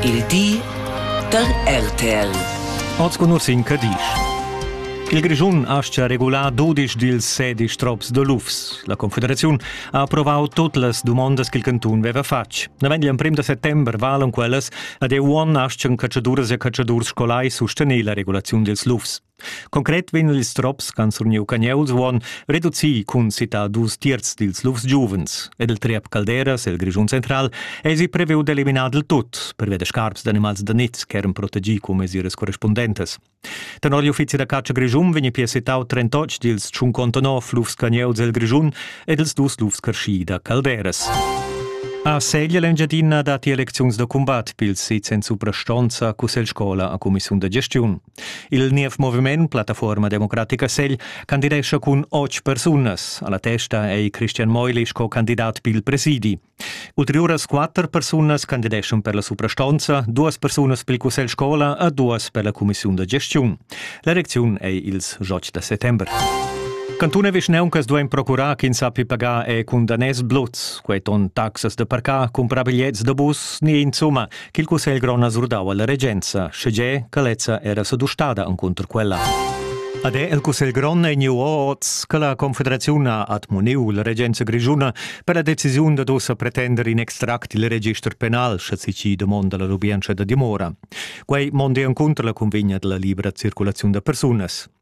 Il di da RTL. Oz con in Cadisch. Il Grischun aschia regular dudisch dils sedisch trops de lufs. La Confederaziun ha approvau tut las dumondas ch'il cantun veva fatg. Naven igl emprem de settember valan quellas ad e uon aschia catschaduras e catschadurs scolai sustener la regulaziun dils lufs. Concret vegn ils trops ch'han surniu Cagnuls uonn reduci cun sita dus tiers dils lufs giuvens ed il triep Calderas el Grischun central eisi previu d'eliminar dil tut pervia da scarps d'animals da niz ch'eran protegì cun mesiras correspundentas. Tenor l'uffizi da catscha Grischun vegni pia sitau 38 dils tschuncontonov lufs Cagnuls el Grischun ed ils dus lufs carschi da Calderas. A Segl l'Engiadina dat elecziuns da cumbat pils sits en suprastonza Cussegl Scola a cumissiun da gestiun. Il niev moviment Plattafuorma democratica segl candidescha cun otg persunas. Alla testa ei Christian Meuli sco candidat pil presidi. Ulteriuras quatter persunas candideschan per la suprastonza, duas persunas pil cussegl scola e duas per la cumissiun da gestiun. L'erecziun ei ils jocs da settember. Cantun e vischneuncas duein procurar ch'in sappi pagar e cun daners bluts. Quei ton taxas da parcar, cumprar bigliets da bus ni insumma Ch'il cussegl grond ha surdau alla regenza, schege che lezza era sedustada encunter quella. Ad è il cussegl grond ei niu oz che la confederaziun ha admoniu la regenza grischuna per la decisiun dad ussa pretender in extract il register penal, sche si domonda la lubientscha da dimora. Quei mondi encunter la convegna della libera circulaziun da persunas.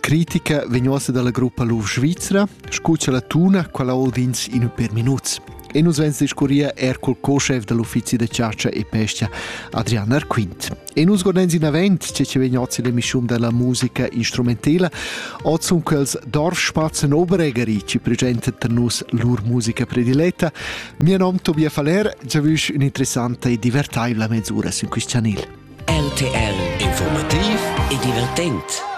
Critica vegn uossa dalla gruppa Luf Svizra, scu cha la tuna quella ho vins in per minuts. E nus vens discurrir er col co-chef dall'uffizi da chatscha e pesca, Adrian Arquint. E nus godens in avent che ci vegn ozi l'emissiun della musica instrumentela, oz un quels Dorfspatzen Oberegeri ci presentet per nus lur musica prediletta. Mio nom Tobia Faller, giavüsch un'interessanta e divertaivla mezz'ura sin quist chanel. RTL Informativ e divertent.